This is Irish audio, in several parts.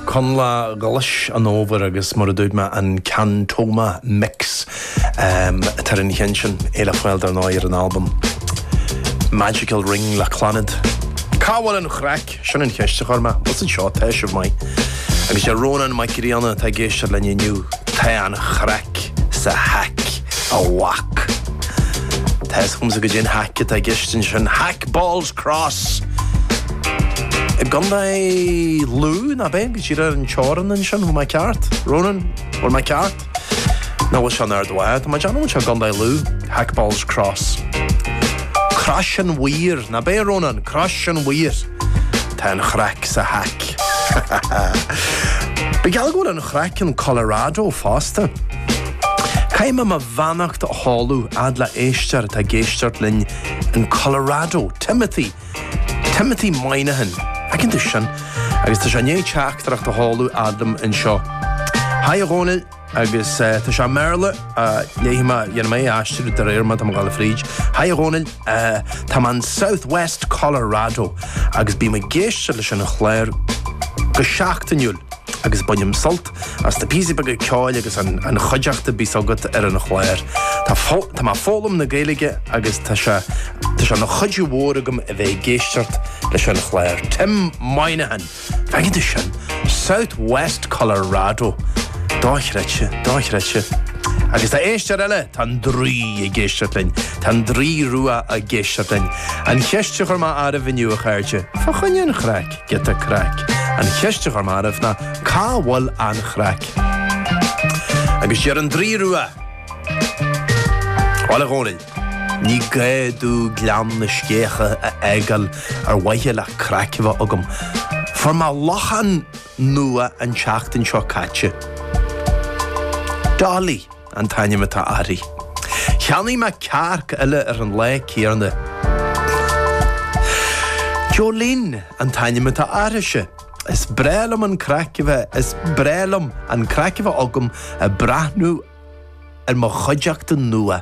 Coinleach Ghlas an Fhómhair agus, mar a dúirt mé, an Cantoma Mix atá ar an cheann sin, é le fáil dar ndóigh ar an albam Magical Ring le Clannad. Cá bhfuil an chraic? Sin an cheist a chuir mé agus anseo, tá sé maith. Agus deir Rónán Mac Grianna atá ag éisteacht linn inniu, tá an chraic sa haic, a mhac. Tá a fhios agam goidé an haic atá i gceist ansin. Haic balls! Cross. I gContae Lú, nach bea? Díreach ar an teorann ansin, má tá mé ceart. Ronan, bhfuil mé ceart? Nó an bhfuil seo in Ard Mhacha? Tá mé ag déanamh go bhfuil seo i gContae Lú. Hackballs Cross. Crois an Mhaoir, nach bea, Ronan? Crois an Mhaoir. Tá an chraic sa haic. Bíodh geall go bhfuil an chraic in Colorado fosta. Caithfidh mé mo. bheannacht a sheoladh a fhad le héisteoir atá ag éisteacht linn in Colorado, Timothy, Timothy Moynihan, an bhfeiceann tú sin? agus tá sé i ndiaidh teachtaireacht a sheoladh a fhad liom anseo. Haigh a Dhónaill, agus eh, tá sé i mBéarla, ah, léifidh mé, déanfaidh mé é a aistriú de réir mar atá mé ag gabháil fríd. Haigh a Dhónaill, eh, tá mé in Southwest Colorado, agus bím ag éisteacht leis an chlár go seachtainiúil, agus bainim sult, As do píosaí beaga ceoil agus an chuideachta bíos agat ar an chláir. Tá mé ag foghlaim na Gaeilge agus tá sé tá sé ina chuidiú mhór domh a bheith ag éisteacht leis an chláir. Tim Moynihan, an bhfeiceann tú sin! South West Colorado. Dochreidte, dochreidte. Agus tá éisteoir eile, tá an draoi ag éisteacht linn. Tá an draoi rua ag éisteacht linn. An cheist a chuir mé oraibh inniu, a chairde, fá choinne an chraic? giota craic. An cheist a chuir mé oraibh ná, cá bhfuil an chraic? Agus deir an Draoi Rua, Bhuel, a Dhónaill, ní gá domh Gleann na Sceiche a fhágáil ar mhaithe le craic a bheith agam. Fuair mé lacha nua an tseachtain seo caite. Dolly. an t-ainm atá uirthi. Cheannaigh mé cearc eile ar an lá céanna. Jolene an t-ainm atá uirthise. Is breá liom an craic a bheith, is breá liom an craic a bheith agam ag breathnú ar mo chuideachta nua.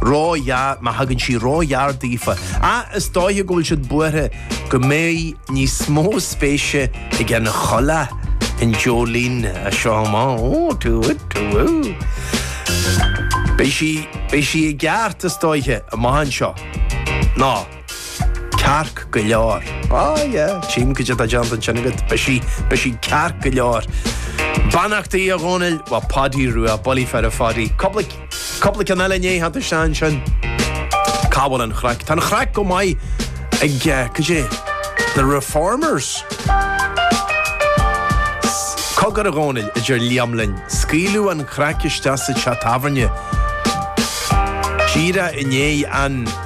ró-ghearr, má thagann sí ródheas daofa, ach is dóiche go bhfuil siad buartha go mbeidh níos mó spéise ag an choileach in Jolene as seo amach. Ó, tú, tú, ú. Beidh sí, beidh sí i gceart, is dóiche, amach anseo. Nó. Cearc go leor. Ah yeah, tchím goidé atá déanta ansin agat, beidh sí, beidh sí cearc go leor. Beannachtaí, a Dhónaill, ó Paudie Rua, bulaí fir a Phaudie. Cupla, cupla ceann eile i ndiaidh teacht isteach ansin. Cá bhfuil an chraic? Tá an chraic go maith ag, eh, cad é, The Reformers. Cogar, a Dhónaill, a deir Liam linn, scaoileadh an chraic isteach sa teach tábhairne. Díreach inné.